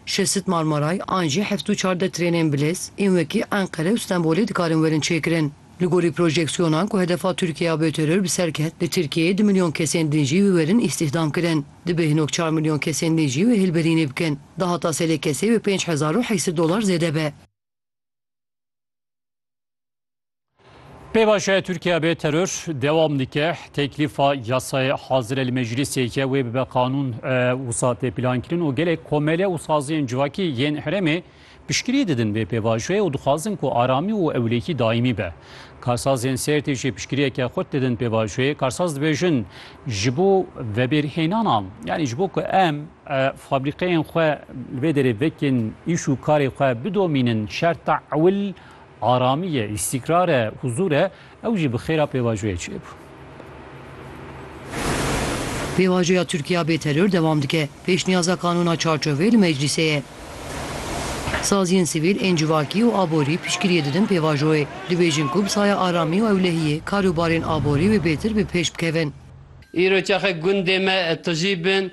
Şesit Marmaray an jî heft û çardeh trênên bilez ên wekî Enqere û Stenbolê dikarin werin çêkirin. Li gorî projeksyonan ku hedefa Tirkiye ya bêteror bi ser ket, li Tirkiyeyê du milyon kesên din jî wê werin îstîhdamkirin. Dibe hin ok çar milyon kesên din jî wê hêlberînê bikin. Dahata serê kesê wê pênc hezar û heysi dolar zêde be. Pêvajoya Tirkiye bê teror dewam dike. Teklîfa yasayê hazire li meclisê ye wê bibe qanûn e, wisa tê plankirin û gelek komele û saziyên civakî yên herêmê piştgirî didin vê pêvajoyê û dixwazin ku aramî û ewlehî daîmî be. Karsazên Sêrtê jî piştgiriyeke xurt didin pêvajoyê. Karsaz dibêjin ji bo vebêrhênana yanî ji bo ku em e, fabrîkeyên xwe li vê derê vekên îş û karê xwe bidomînin şerta ewil Aramî ye, îstîkrar e, huzûr e, ew jî bi xêra pêvajoyê çêbû. Pêvajoya Tirkiya bê teror dewam dike. Pêşniyaza Kanûna Çarçovê li meclîsê ye. Saziyên sivîl ên civakî û aborî piştgiriyê didin pêvajoyê. Dibêjin ku bi saya aramî û ewlehiyê karûbarên aborî wê bêtir bi pêş bikevin. Îro çaxe gundê me tijî bin.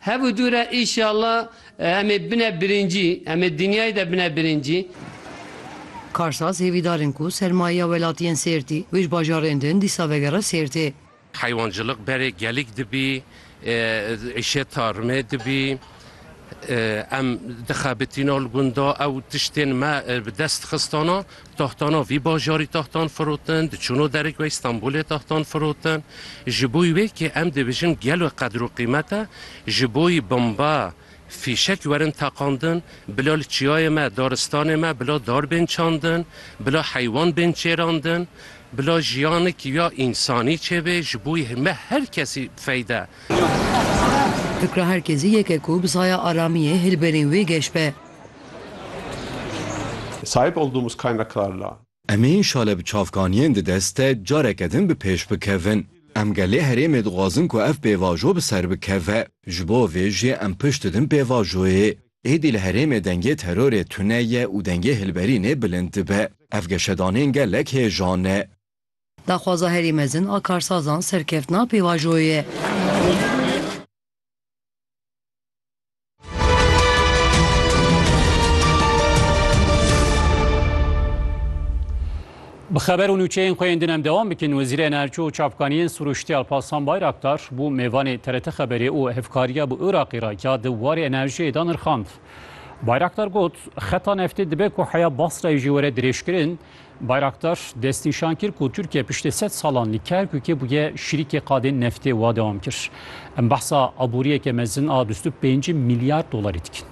Hev û dû re îşallah em ê bine birincî, em ê dinyayê de bine birincî. Karsaz hêvîdar in ku sermayeya welatî yên Sêrtî û ji bajarên din dîsa vegere Sêrtê. Heywancilîq berê gelîk dibî, îşeta rime dibî. Em dixebitîna li gunda ew tiştên me bi dest xistana. Taxtana vî bajarî taxtan firotin, diçûno derik wê Stenbolê taxtan firotin. Ji boî wê kê em dibijin gelo qedir û qîmet e, ji boî bomba, fîşek werin teqandin, bila li çiyayê me, daristanê me bila dar bên çandin, bila heywan bên çêrandin, bila jiyanikî ya însanî çêbê, ji boî me her kesî feyde. Fikra her kesî yek e ku bi saya aramiyê hilberîn wê geş be. Sahip olduğumuz kaynaklarla. Em ê şale bi çavkaniyên di dest de careke din bi pêş bikevin. Em gelê herêmê dixwazin ku ev pêvajo bi ser bikeve. Ji bo vê jî em pişt didin pêvajoyê. Êdî li herêmê dengê terorê tune ye û dengê hilberînê bilind dibe. Ev geşedanên gelek hêjan e. Daxwaza herî mezin a karsazan serkeftina pêvajoyê ye. Bi xeber û nûçeyên xwe yên din em dewam bikin Wezîrê Enerji û Çavkaniyên Sûrûştî Alparslan Bayraktar bû mêvanê TRT Xeberê û hevkariya bi Iraqê re ya di warê enerjiyê de nirxand. Bayraktar got, Xeta neftê dibe ku heya Basrayê jî were dirêjkirin, Bayraktar destnîşan kir ku Tirkiye piştê sed salan li Kerkûkê bûye şirîkê qadên neftê û dewam kir, Em behsa aboriyeke mezin a bîst û pênc milyar dolarî dikin.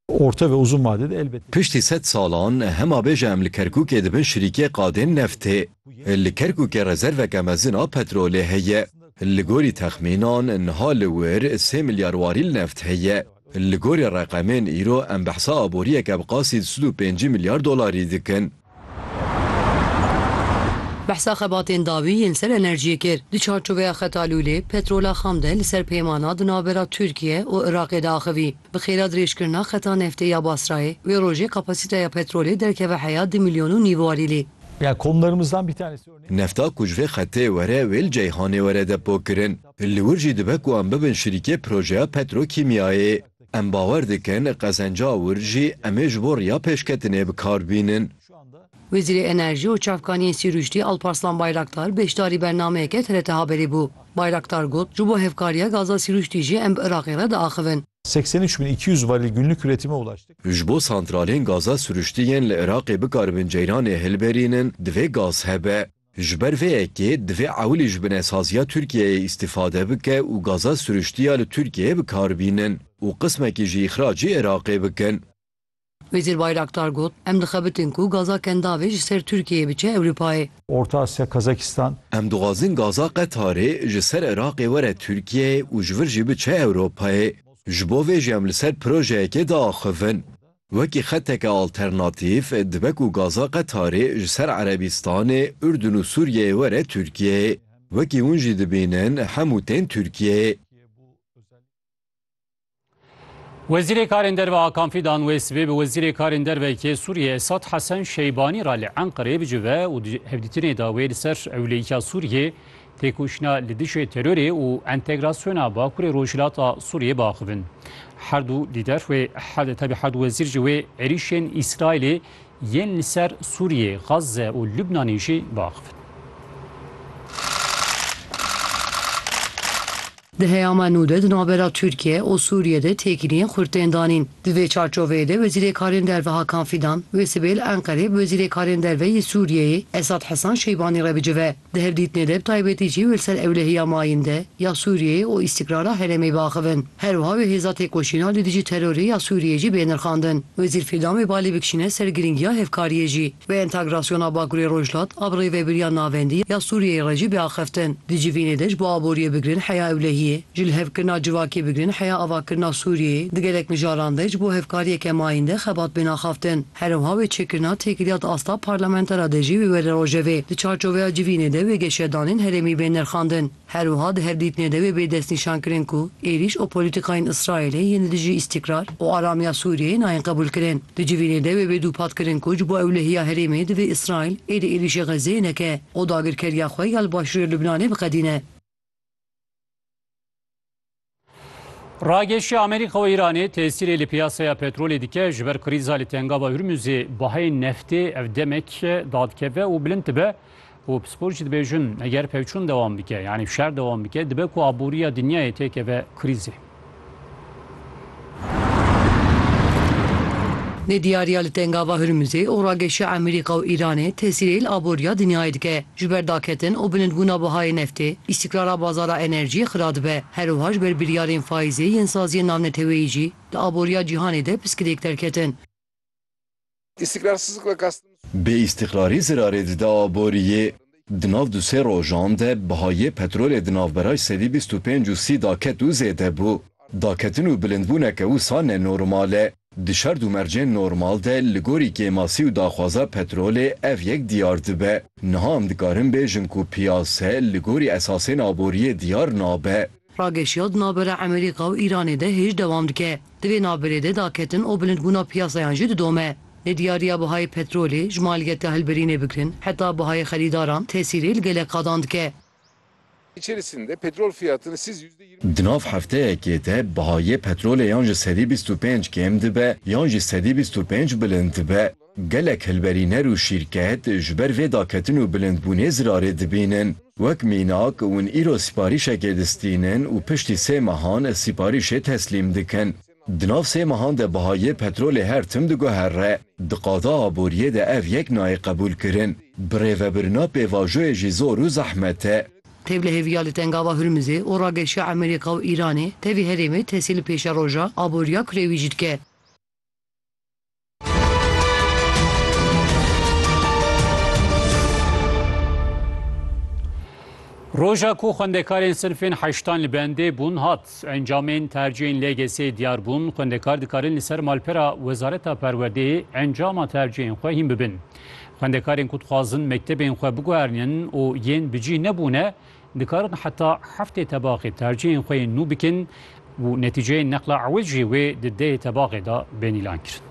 Orta ve uzun vade de elbette. Piştî sed salan hema bêje em li Kerkûkê dibin şirîkê qadên neftê. Li Kerkûkê rezerveke mezin a petrolê heye. Li gorî texmînan niha li wir sê milyar warîl neft heye. Li gorî reqemên îro em behsa aboriyeke bi qasî di sid û pêncî milyar dolarî dikin. Behsa xebatên dawî yên ser enerjiyê kir. Di çarçoveya Xeta Lûlê, petrola xam de li ser peymana di navbera Tirkiye û Iraqê de axivî. Bi xêra dirêjkirina Xeta Neftê ya Basrayê, wê rojê kapasîteya petrolê derkeve heya di milyon û nîv warîlê. Nefta ku ji vê xetê were wê li Ceyhanê were depokirin. Li wir jî dibe ku em bibin şirîkê projeya petrokîmyayê. Em bawer dikin qezenca wir jî em ê ji bo riya pêşketinê bi kar bînin. Wezîrê Enerjî û Çavkaniyên Sîrûştî Alparslan Bayraktar beşdarî bernameyeke TRT Haberî bû. Bayraktar got, Ji bo hevkariya gaza Sîrûştî jî em bi Iraqê re diaxivin. Seksen û üç bin iki yüz varîl günlük üretime ulaştık. Ji bo santralên gaza Sirûştî yên li Iraqê bikaribin ceyranê hilberînin, divê gaz hebe. Ji ber vê yekê divê ewilî ji binesaziya Tirkiyeyê îstîfade bike û gaza siriştî ya li Tirkiyeyê bi kar bînin û qismekî jî îxracî Iraqê bikin. Wezîr Bayraktar got, Em dixebitin ku gaza Kendavê ji ser Tirkiyeyê biçe Ewropayê. Orta Asya, Kazakistan. Em dixwazin gaza Qetarê ji ser Iraqê were Tirkiyeyê û ji vir jî biçe Ewropayê. Ji bo vê jî em li ser projeyekê diaxivin. Wekî xeteke alternatîf dibe ku gaza Qetarê ji ser Erebîstanê, Urdun û Sûriyeyê were Tirkiyeyê. Wekî hûn jî dibînin hemû tên Tirkiyeyê. Wezîrê Karên Derve Akan Fîdan wê sibê bi Wezîrê Karên Derve yê Sûriyeyê Esad Hesen Şeybanî re li Enqereyê bicive û di hevdîtinê de wê li ser ewleyîka Sûriyeyê Têkoşîna li dijî terorê û entegrasyona Bakurê Rojhilata Sûriyê biaxivin. Her du lîder wê tevî her du wezîr jî wê êrîşên Îsraîlê yên li ser Sûriyê, Gaze û Lubnanê jî biaxivin. Di heyama nû de di navbera Tirkiye û Sûriye de têkiliyên xurt tên danîn. Di vê çarçoveyê de Wezîrê Karên Derve Hakan Fîdan wê sibêl Enqereyê bi Wezîrê Karên Derve yê Sûriyeyê Esad Hesan Şeybanî re bicive. Di hevdîtinê de bi taybetî jî wê li ser ewlehiya mayînde ya Sûriyeyê û îstîkrara herêmê biaxivin. Her wiha wê hêza têkoşîna li dijî terorê ya Sûriyeyê jî bê nirxandin. Wezîr Fîdan wê balê bikişîne ser girîngiya hevkariyê jî. Bi entegrasyona Bakurê Rojhilat a bi rêvebiriya navendî ya Sûriyeyê re jî bê axiftin. Di civînê de ji bo aboriyê bigrin heya ewlehiyê, ji lihevkirina civakê bigrin heya avakirina Sûriyeyê, di gelek mijaran de ji bo hevkariyeke mayînde xebat bên axaftin. Herewha wê çêkirina têkiliya di asta parlamentera de jî wê were rojevê. Di çarçoveya civînê de wê geşedanên herêmî bên nirxandin. Her wiha di hevdîtinê de wê bê destnîşan kirin ku êrîş û polîtîkayên Îsraîlê yên li dijî îstîkrar û aramiya Sûriyeyê nayên qebûlkirin. Di civînê de wê bê dûpatkirin ku ji bo ewlehiya herêmê divê Îsraîl êdî êrîşê Xezzeyê neke û dagirkeriya xwe ya li Başûrê Lubnanê biqedîne. Ragêşî Amerîka û Îranê tesîrê li piyasaya petrolê dike ji ber krîza li tengava Hurmuzê baheyê neftê ev demek dadkeve û bilind dibe û pispor jî dibêjin eger pevçûn dewam bike yanî şer dewam bike dibe ku aboriya dinyayê têkeve krîzê. Di diyariya li Tengava Hurmuzê û rageşiya Emerîka û Îranê tesîrê li aboriya dinyayê dike. Ji ber daketin û bilindbûna bihayê neftê, îstîkrara bazara enerjiyê xira dibe. Herwiha ji ber biryarên faîzê yên saziyên navneteweyî jî di aboriya cîhanê de piskirêk derketin. Bê îstîqrarî zirarê dide aboriyê. Di nav du sê rojan de bihayê petrolê di navbera sedî bîst û pênc û sî da ket û zêde bû. Daketin û bilindbûneke wisa ne normal e. Di şerd û mercên normal de li gorî kêmasî û daxwaza petrolê ev yek diyar dibe. Niha em dikarin bêjin ku piyase li gorî esasên aboriyê diyar nabe. Rageşiya di navbera Emerîka û Îranê de hêj dewam dike. Di vê navberê de daketin û bilindbûna piyasayan jî didome. Nediyariya bihayê petrolê, ji maliyeta hilberînê bigirin heta bihayê xerîdaran tesîrê li gelek qadan dike. Di nav hefteyekê de bihayê petrolê yan ji sedî bîst û pênc kêm dibe yan jî sedî bîst û pênc bilind dibe. Gelek hilberîner û şîrket ji ber vê daketin û bilindbûnê zirarê dibînin. Wek mînak, hûn îro sîparîşekê distînin û piştî sê mehan sîparîşê teslîm dikin. Di nav sê mehan de biha yê petrolê her tim diguhere. Di qada aboriyê de ev yek nayê qebûlkirin. Birêvebirina pêvajoyê jî zor û zehmet e. Tev li hêviya li Tengava Hurmizê û rageşiya Emerîka û Îranê tevî herêmê tesî li pêşeroja aboriya kurê wî jî dike. Roja ku xwendekarên sinfên heştan li bendê bûn hat. Encamên tercihên LGS'ê diyar bûn, xwendekar dikarin li ser malpera Wezareta Perwerdeyê encama tercihên xwe hîn bibin. Xwendekarên ku dixwazin mektebên xwe biguherînin û yên bi cîh nebûne, Dikarin heta heftê tebaxê tercîhên xwe yên nû bikin û netîceyên neqla ewil jî wê di dehê tebaxê de bên îlan kirin.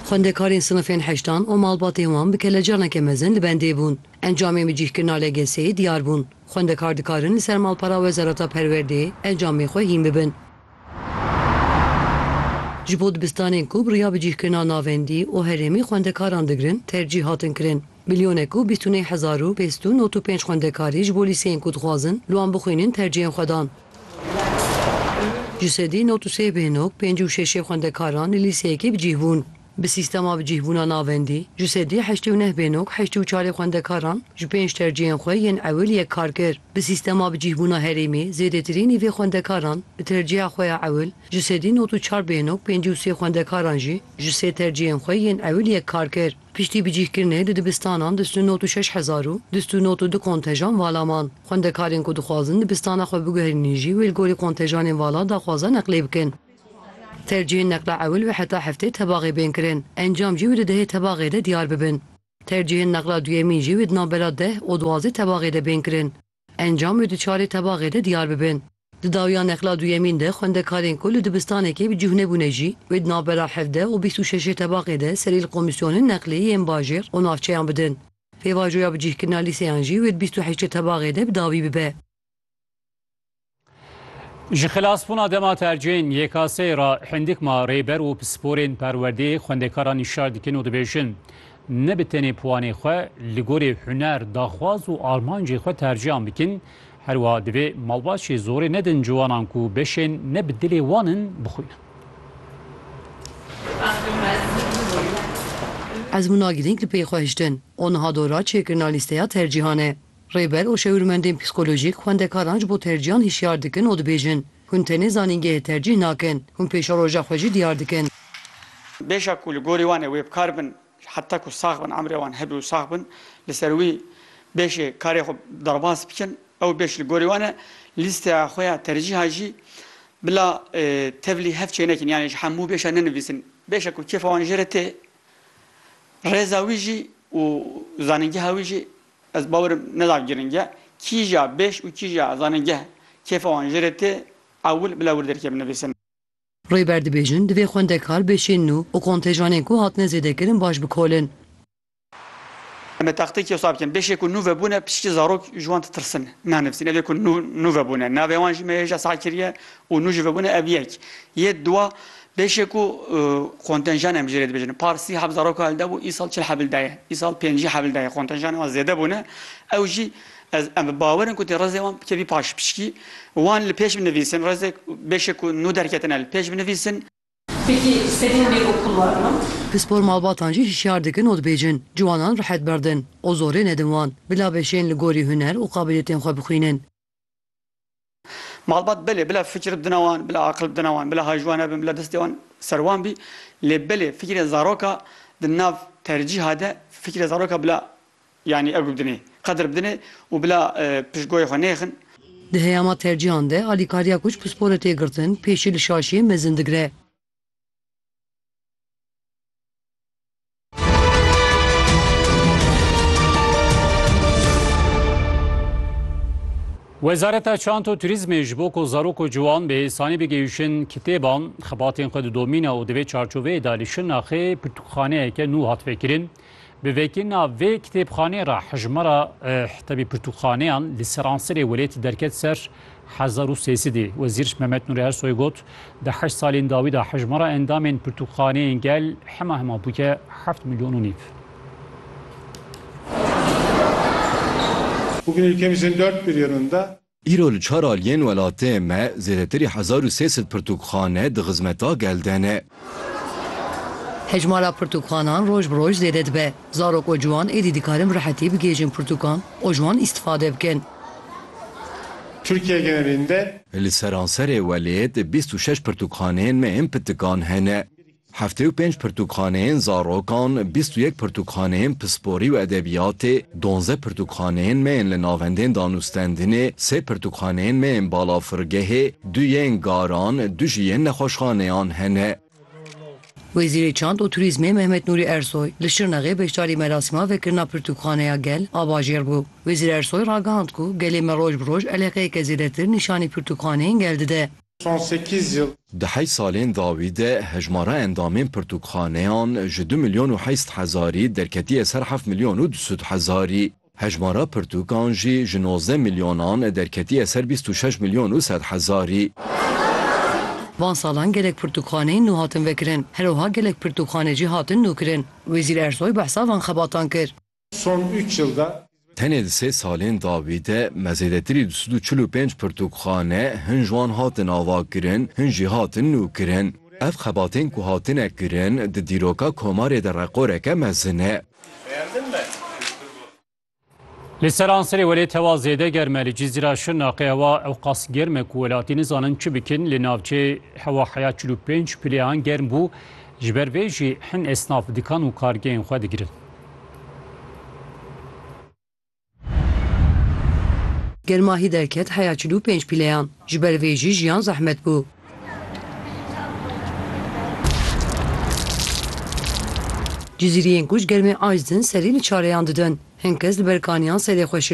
Xwendekarên sinifên heştan û malbatên wan bi kelecaneke mezin li bendê bûn. Encamên bi cîhkirina LGS'ê diyar bûn. Xwendekar dikarin li ser malpera Wezareta Perwerdeyê encamê xwe hîn bibin. Ji bo dibistanên ku bi riya bicîhkirina navendî û herêmî xwendekaran digirin tercîh hatin kirin. Milyonê ku bîst û nê hezar û pênc sed û nod û pênc xwendekarî ji bo lîseyên ku dixwazin li wan bixwînin tercîhên xwe dan. Ji sedî nod û sê bêhnog pêncî û şeşê xwendekaran li lîseyekê bicîh bûn. Bi sîstema bicîhbûna navendî, ji sedî heştê û neh bênog heştê û çarê xwendekaran ji pênc terciyên xwe yên ewil yek kar kir. Bi sîstema bicîhbûna herêmî zêdetirî nîvê xwendekaran bi terciya xwe ya ewil ji sedî nod û çar bênog pêncî û sê xwendekaran jî ji sê terciyên xwe yên ewil yek kar kir. Piştî bicîhkirinê di dibistanan di stu nod û şeş hezar û di stu nod û du kontejan vala man. Xwendekarên ku dixwazin dibistana xwe biguherînin jî wê li gorî kontejanên vala daxwaza neqlê bikin. Tercîhên neqla ewil û heta heftê tebaxê bên kirin, encam jî wê di dehê tebaxê de diyar bibin. Tercîhên neqla duyemîn jî wê di navbera deh û duwazdeh tebaxê de bên kirin, encam wê di çarê tebaxê de diyar bibin. Di dawiya neqla duyemîn de xwendekarên ku li dibistanekê bi cûh nebûne jî wê di navbera hevdeh û bîst û şeşê tebaxê de serî li komîsyonên neqlê yên bajêr û navçeyan bidin. Pêvajoya bicîhkirina lîseyan jî wê di bîst û heştê tebaxê de bi dawî bibe. Ji xilasbûna dema tercên YKS'ê re hindik ma rêber û pisporên perwerdê xwendekaran nîşar dikin û dibêjin ne bi tenê piwanê xwe li gorî huner, daxwaz û armancê xwe tercihan bikin, herwiha divê malbaçî zorê nedin ciwanan ku beşên ne bi dilê wan in bixwînin. Ezmûna girîng li pey xwe hiştin û niha dora çêkirina lîsteya tercihan e. Rêber û şêwirmendên psîkolojîk xwendekaran ji bo tercîhan hişyar dikin û dibêjin, Hûn tenê zanîngehê tercîh nakin, hûn pêşeroja xwe jî diyar dikin. Bêjak ku li gorî wan e wê bi kar bin heta ku sax bin, emrê wan hebe û sax bin, li ser wî bêjê karê xwe derbas bikin. Ew bêj li gorî wan e lîsteya xwe ya tercîhan jî bila tevlî hev çê nekin, yanî ji hemû bêj re nenivîsin. Bêjek ku kêfa wan jê re tê, rêza wî jî û zanîngeha wî jî Ez bawerim neda giring e. Kîja bêş û kîja ez zanê geh kêfa wan jê re tê ewil bila wir derkeve nivîsin. Rêber dibêjin divê xwendekar bêşînin û û kontêjanên ku hatine zêdekirin baş bikolin. Em ê taxteyekî wisa bikin. Bêşê ku nû vebûne piçikî zarok ji wan ditirsin nanivîsin. Evê ku nû nû vebûne navê wan jî me hêja sax kiriye û nû jî vebûne ev yek. Yê diwa Beşê ku kontenjanên bi jêrê dibêjin par sî heb zaroka elde bû îsal çil hebil de ye, îsal pêncî hebil de ye kontenjanên wan zêde bûne ew jî ez em bi bawer in ku tê rezê wan bikevî paş pişkî wan li pêş binivîsin rezê beşê ku nû derketine li pêş binivîsin. Pêkî sedîn bê û kul werin. Pispor malbatan jî hişyar dikin û dibêjin ciwanan rehet berdin û zorê nedin wan bila beşên li gorî huner û qabiliyetên xwe bixwînin. Malbat belê bila fikir bidina wan, bila aqil bidina wan, bila hay ji wan hebin, bila destê wan ser wan bî lê belê fikirê zaroka di nav tercîha de fikirê zaroka bila yanî ergo bidinê, qedir bidinê û bila piştgoyê xwe nêxin. Di heyama tercîhan de alîkariya ku ji pisporê tê girtin pêşî li şaşiyê mezin digre. Wezareta Çant û Turîzmê ji bo ku zarok û ciwan bi îsanî bigihîşin kitêban, xebatên xwe didomîne û di vê çarçoveyê de li Şirnaxê pirtûkxaneyeke nû hat vekirin. Bi vekirina vê kitêbxaneyê re hejmara e, tevî pirtûkxaneyan li seransirê welêtî derket ser. Hezar û sê sidî Wezîr Mehmet Nûrî Ersoy got, Di heşt salên dawî de hejmara endamên pirtûkxaneyên gel hema hema bûye heft milyon û nîv. Bugün ülkemizin dört bir yanında. Îro li çar aliyên welatê me zêdetirî hezar û sê sed pirtûkxane di xizmeta gel de ne. Hejmara pirtûkanan roj bi roj zêde dibe. Zarok û ciwan êdî dikarin bi rehetî bigihêjin pirtûkan û ji wan îstîfade bikin. Tirkiye gerînde. Li seranserê welêt bîst û şeş pirtûkxaneyên me ên pitikan hene. Heftê û pênc pirtûkxaneyên zarokan, bîst û yek pirtûkxaneyên pisporî û edebiyatê, Donze pirtûkxaneyên me yên li navendên danûstendinê, sê pirtûkxaneyên me yên balafirgehê, du yên garan, du jî yên nexweşxaneyan hene. Wezîrê Çand û Turîzmê Mehmet Nûrî Ersoy li Şirnexê beşdarî merasîma vekirina pirtûkxaneya gel a bajêr bû. Wezîr Ersoy ragihand ku gelê me roj bi roj eleqeyeke zêdetir nîşanî pirtûkxaneyên gel dide. son sekîz yıl. Di heyt salên dawî de hejmara endamên pirtûkxaneyan ji du milyon û heyst hezarî derketiye ser heft milyon û du sed hezarî. Hejmara pirtûkan jî ji nozdeh milyonan derketiye ser bîst û şeş milyon û sed hezarî. Van salan gelek pirtûkxaneyên nû hatin vekirin. Her wiha gelek pirtûkxane jî hatin nûkirin. Wezîr Ersoy behsa van xebatan kir. Son üç yılda Tenê di sê salên dawî de me zêdetirî du sed û çil û pênc pirtûkxane, hin ji wan hatin avakirin, hin jî hatin nûkirin. Ev xebatên ku hatine kirin di dîroka komarê de reqoreke mezin e. Li seranserê welê tewa zêde germ e. Li Cizîra Şirnaqê hewa ewqas germ e ku welatî nizanin çi bikin. Li navçeyê hewa heya çil û pênc pilêyan germ bû. Ji ber vê jî hin esnaf dikan û kargehên xwe digirin. Germahî derket heya çil û pênc pîleyan. Ji ber vê jî jiyan zehmet bû. Cizîriyên ku ji germê aciz in serî li çareyan didin. Hin kes li ber kaniyan serê xwe şil